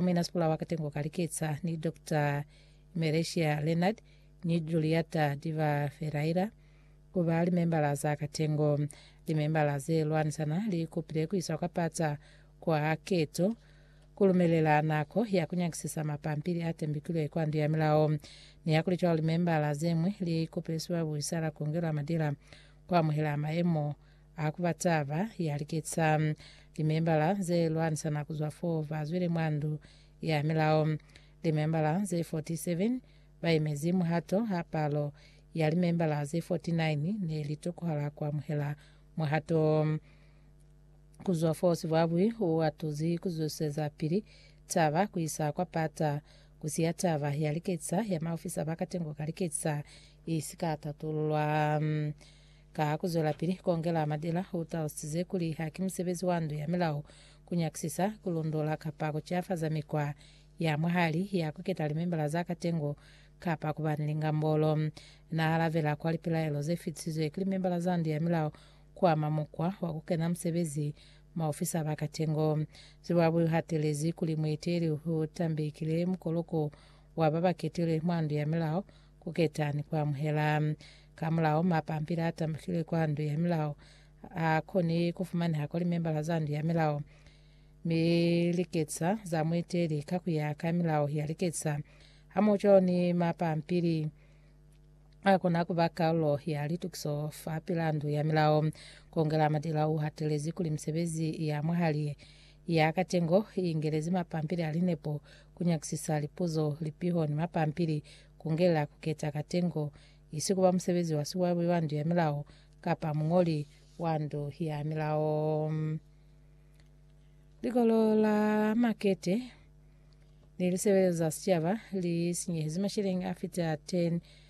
Mina Sipula wa Katengo ka Liketsa ni Doctor Meresia Leonard ni Juliata Diva Ferreira ku ba limembala za Katengo. Limembala ze lwanisana li kupile ku iswa kwa pata kwa keto ku lumelela nako ya ku nyakisisa mapampili a tembikilwe kwa Ndu ya Milao. Nihakulicwalo, limembala ze ñwi li kupile sibabuhisa la Kongelo ya Madila ku amuhela maemo A ku ba taba ya liketsa. Limembala ze lwanisana ku zwa fo ba zwile mwa ndu ya milao. Limembala ze 47 ba yemezi muhato ha palo ya limembala ze 49 ne li tokohala ku amuhela muhato wo. Ku zwa fo sibwabwi u atuzi ku zwezwiseza pili taba ku isa kwa pata, ku siya taba ya liketsa ya maofisa ba katengo ka liketsa i si ka tatululwa. Ka ku zwelapili ku ongela matila, u talusize kuli haki musebezi wa ndu ya milao ku nyakisisa, ku lundola kapa ku ciafaza mikwa ya mwahali ya ku keta limembala za katengo kapa ku ba ni lingambolo. Na alabela kwa lipilaelo ze fitisizwe ki limembala za ndu ya milao ku ama mukwa wa ku kena musebezi maofisa ba katengo. Zimbabwe u hatelezi kuli mueteli u tambekile mukoloko wa ba ba ketilwe mwa ndu ya milao, ku keta ni ku amuhela. Kamulaho, mapampili a tambukile kwa Ndu ya Milao a koni ku fumaneha kwa limembala za Ndu ya Milao mi liketsa za muiteli ka ku ya ka milao ya liketsa hamoho ni mapampili a kona ku ba karolo ya litukiso fa pila Ndu ya Milao. Ku ongela madila u hatelezi kuli misebezi ya mwahali Ya katengo i ingelezi mapampili a linepo, ku nyakisisa lipuzo, lipiho, ni mapampili, ku ngelela ku keta katengo, isi ku ba musebezi wa siwaiwai wa Ndu ya Milao kapa muñoli wa Ndu ya Milao. Likolo la makete ni lisebelelo za sicaba li sinyehezi masheleñi a fita 10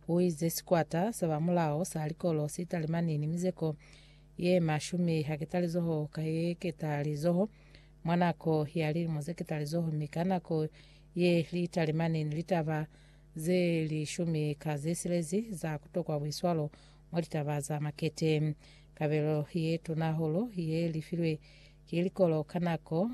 Ku ize sikwata sa ba mulao sa likolo si talimani ni mizeko ye mashumi haketalizoho ka yeketalizoho mwa nako ya lilimo ze ketalizoho mi ka nako ye li talimani ni litaba ze lishumi ka ze silezi za ku tokwa buiswalo mwa litaba za makete. Kabelo ye tuna hahulu ye li filwe ki likolo ka nako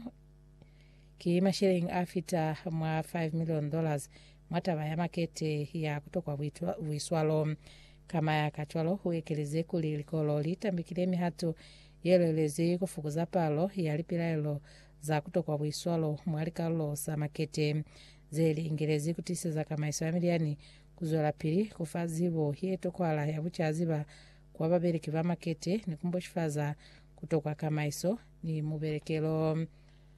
ki masheleng a fita mwa 5 million dollars mwa taba ya makete ya ku tokwa buiswalo. Kama ya ka cwalo, u ekelezi kuli likolo li tambikile mihato ye lwelezi ku fukuza palo ya lipilaelo za ku tokwa buiswalo mwa likalulo za makete ze li ingelezi ku tiiseza kamaiso ya milyani ku zwelapili ku fa zibo ye tokwahala ya bucaziba kwa babeleki ba makete ni ku mboshifaza ku tokwa kamaiso ni mubelekelo.